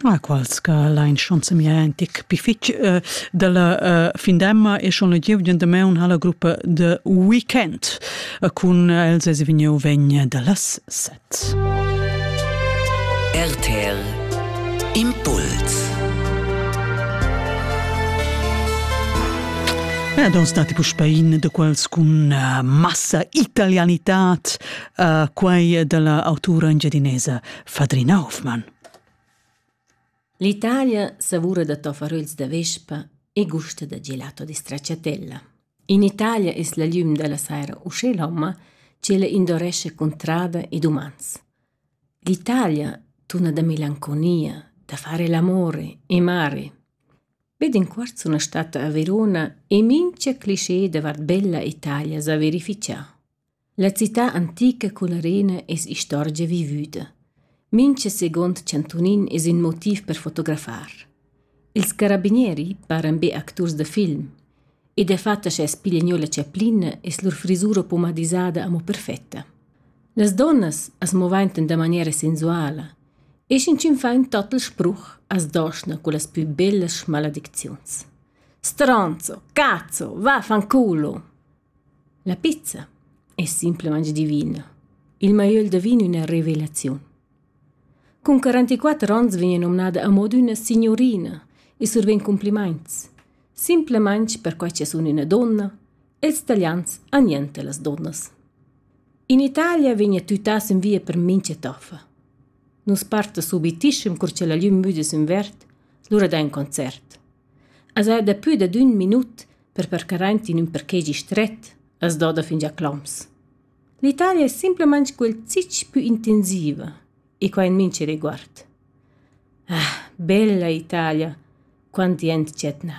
Ma quals che lain schon semia antic pi fitg uh, dalla uh, findemma e schon la gieu demaun ha la gruppa The Weekend uh, cun els es vegniu vegn dallas set. RTL Impuls Ja, da stati puspein de quels cun uh, massa italianità uh, quai dalla autura engiadinesa Fadrina Hoffmann. L'Italia savura da tofaröls da vespa e gusta da gelato di stracciatella. In Italia es la llum da la saira usché lomma, cela indoresce contrada ed umans. L'Italia tuna da melanconia, da fare l'amore e mare. Ved in quarzo una stata a Verona e minchia cliché davart bella Italia sa verificia. La cità antica cun arena es istorgia vivüda. Mincha seguond chantunin es ün motiv per fotografar. Ils carabinieri paran be acturs da film e dafatta scha es piglia gnö la chaplina es lur frisura pomadisada amo perfetta. Las donnas as movaintan da maniera sensuala e sch'inchün fa ün total spruch as doschna cullas pü bellas schmaladicziuns. Stronzo, cazzo, vaffanculo! La pizza es simplamaing divina. Il maiöl da vin üna revelaziun. Cun 44 ons vegna nomnada a moda üna signurina e survegn cumplimaints. Simplamaing perquai cha sun üna donna e ils talians han niente las donnas. In Italia vegna tütà sün via per mincha toffa. Nus parta subitischem cur cha la glüm müda sün verd, lura da ün concert. As ha dapü dad ün minut per percaraint in ün parkegi stret as doda fingià cloms. L'Italia es simplamaing quel zich pü intensiva e quai in mincha riguard. Ah, bella Italia, quant jent dschet na!